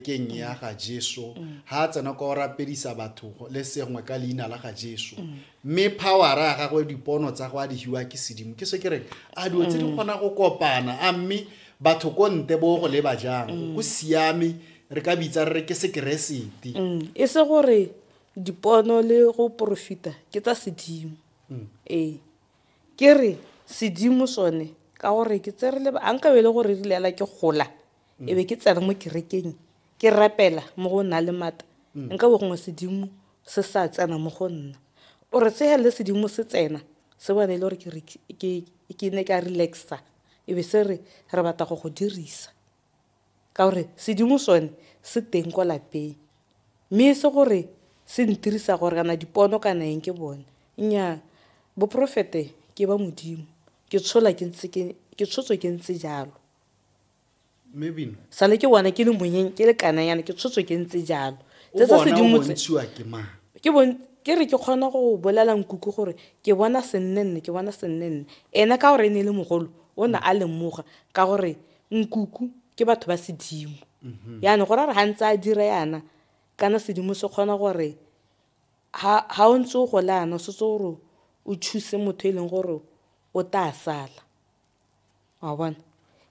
keng ya ga Jesu ha a tsena kwa o rapedisa batho le sengwe ka leina la ga Jesu mme powera ya gagwe dipono tsa go a di hiwa ke sedimo ke se ke reng a dilo tse di mm. kgona go kopana a mme batho ko nte bo go leba jang mm. go siame re ka bitsa re re ke sekeresete mm. e se gore dipono le go porofita ke tsa sedimo ee ke re sedimo sone ka gore ke tse re leba a nkabe e le gore re lela ke gola e be ke tsena mo kerekeng ke rapela mo go na le mata nka bo gongwe sedimo se sa tsena mo go nna ore se hele sedimo se tsena se bone e le gore ke ne ka relaxa e be se re re batla go go dirisa ka gore sedimo sone se teng kwa lapeng mme e se gore se ntirisa gore kana dipono kana eng ke bone nnyaa boporofete ke ba modimo ke tshola ke ntse ke tshotswe ke ntse jalo sale ke bona ke le monyeng ke le kananyana ke tshotswe ke ntse jalo tse tsa sedimotse ke re ke kgona go bolela nkuku gore ke bona sennenne ke bona sennenne ene ka gore e ne e le mogolo o ne a lemoga ka gore nkuku ke batho ba sedimo mhm. yana go ra re ga ntse a dira yana kana sedimo se kgona gore ga o ntse o gole yana o setse gore o thuse motho e leng gore o tla sala wa bona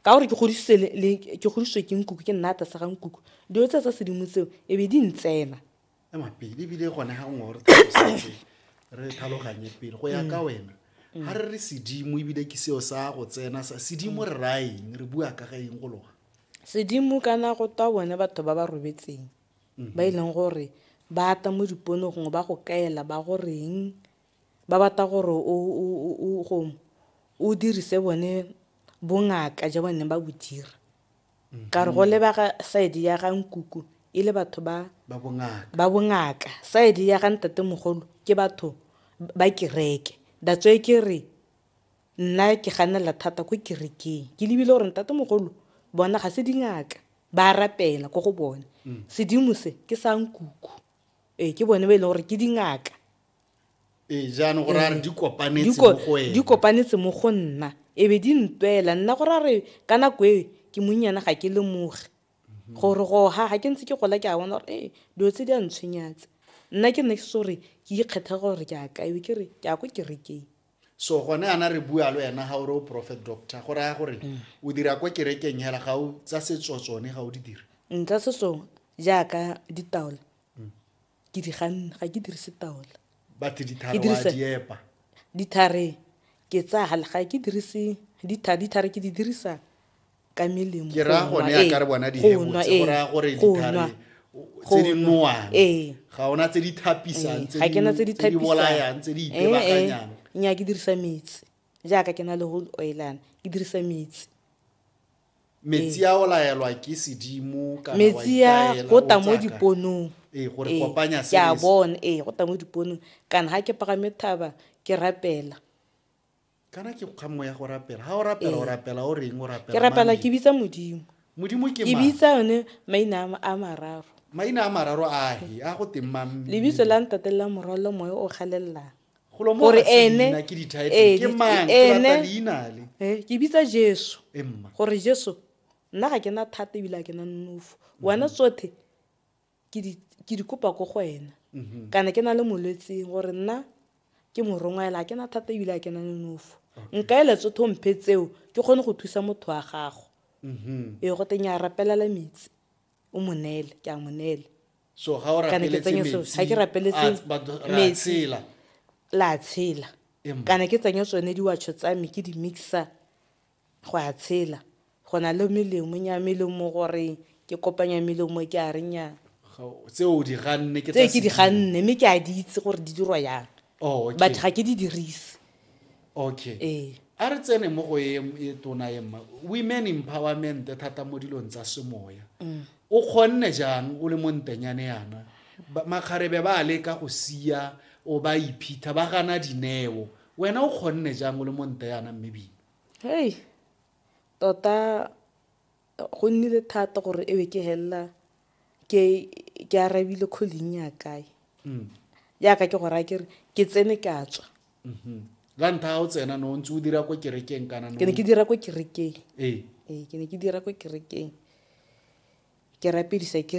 ka gore ke godisitswe ke nkuku ke nna ata sa ga nkuku dilo tse tsa sedimo tseo e be di ntsena mapele ebile gone ga nngwe gore re tlhaloganye pele go ya ka mm. wena ga re re sedimo ebile ke seo sa go tsena sa sedimo re ra eng re bua ka ga eng go loga sedimo kana go twa bone batho ba ba robetseng ba e leng gore ba ata mo dipono gongwe ba go kaela ba go reng ba batla gore o dirise bone bongaka ja bone ba bo dira ka re go lebaka side ya ga nkuku e le batho ba ba bongaka side ya ga ntate mogolo ke batho ba kereke that's why ke re nna ke ganela thata ko kerekeng ke lebile gore ntate mogolo bona ga se dingaka ba rapela ko go bone mm. sedimo se ke sa nkuku ee ke bone ba e leng gore ke dingaka ee jaanong go raya re di kopanetse mo go ene di kopanetse mo go nna e be di ntwela nna go raya re ka nako e ke monnyana ga ke lemoge mhm. gore go ha ga ke ntse ke gola ke a bona gore ee dilo tse di a ntshwenyatse nna ke nne ke se gore ke ikgetha gore ke a kae ke re ke a ko kerekeng so gone ana re bua le wena ga ore o prophet doctor go raya gore mm. o dira kwa kerekeng hela ga o tsa setso tsone ga o di dira nka mm, setso jaaka ditaola mm. ke di ganna ga ke dirise taola batse dithare wa di epa dithare ke tsaya ga ke dirise dithare dithare ke di dirisa ka melemo ke ra gone ya ka re bona di hebotse go ra gore dithare tse di nowang ga ona tse di thapisang tse di tse di tse di bolayang tse di itebakanyang nya ke dirisa metsi jaaka ke na le go oilana ke dirisa metsi metsi a o laelwa ke sedimo kana metsi a go tla mo diponong ee gore ee, kopanya se ya bona ee go tla mo diponong kana ha ke pagame thaba ke rapela kana ke kga moya go rapela ha o rapela o ee. rapela o reng o rapela ke rapela ke bitsa modimo modimo ke ke bitsa yone maina a mararo maina a mararo a he a go teng mang lebitso la ntate la morwalo moya o galelelang gore ene ke bitsa jesu gore jesu nna ga ke na thata ebile a ke na nonofo mhm. wena tsothe ke di kopa ko go wena mhm. kana ke na le molwetseng gore nna ke morongwa ela a ke na thata ebile a ke na nonofo nka ele tsothe o mphe tseo ke kgone go thusa motho wa gago mhm. ee go teng ya rapelela metsi o mo neele ke a mo neele so ga o kana ke tsenye so ga ke rapeletse metsi la tshela kana ke tsenye tsone diwatsho tsa me ke di mixa go a tshela go na le melemo nya melemo gore ke kopanya melemo ke a renya tse o di ganne ke tse ke di ganne mme ke a di itse gore di dirwa yang oh, batho ga ke di dirise okay ee a re tsene mo go e e tona e mma women empowerment thata mo dilong tsa semoya mm. o kgonne jang o le mo ntenyane yana makgarebe ba leka go sia o ba iphitha ba gana dineo wena o kgonne jang o le mo nte yana mme bino hey tota Go nnile thata gore e be ke helela ke ke arabile calling ya kae mm. yaka ke gore a kere ke tsene ke a tswa mm-hmm. ka ntha ga o tsena no ntse o dira ko kerekeng kana ke ne ke dira ko kerekeng ee. ee ke ne ke dira ko kerekeng ke rapedisa ke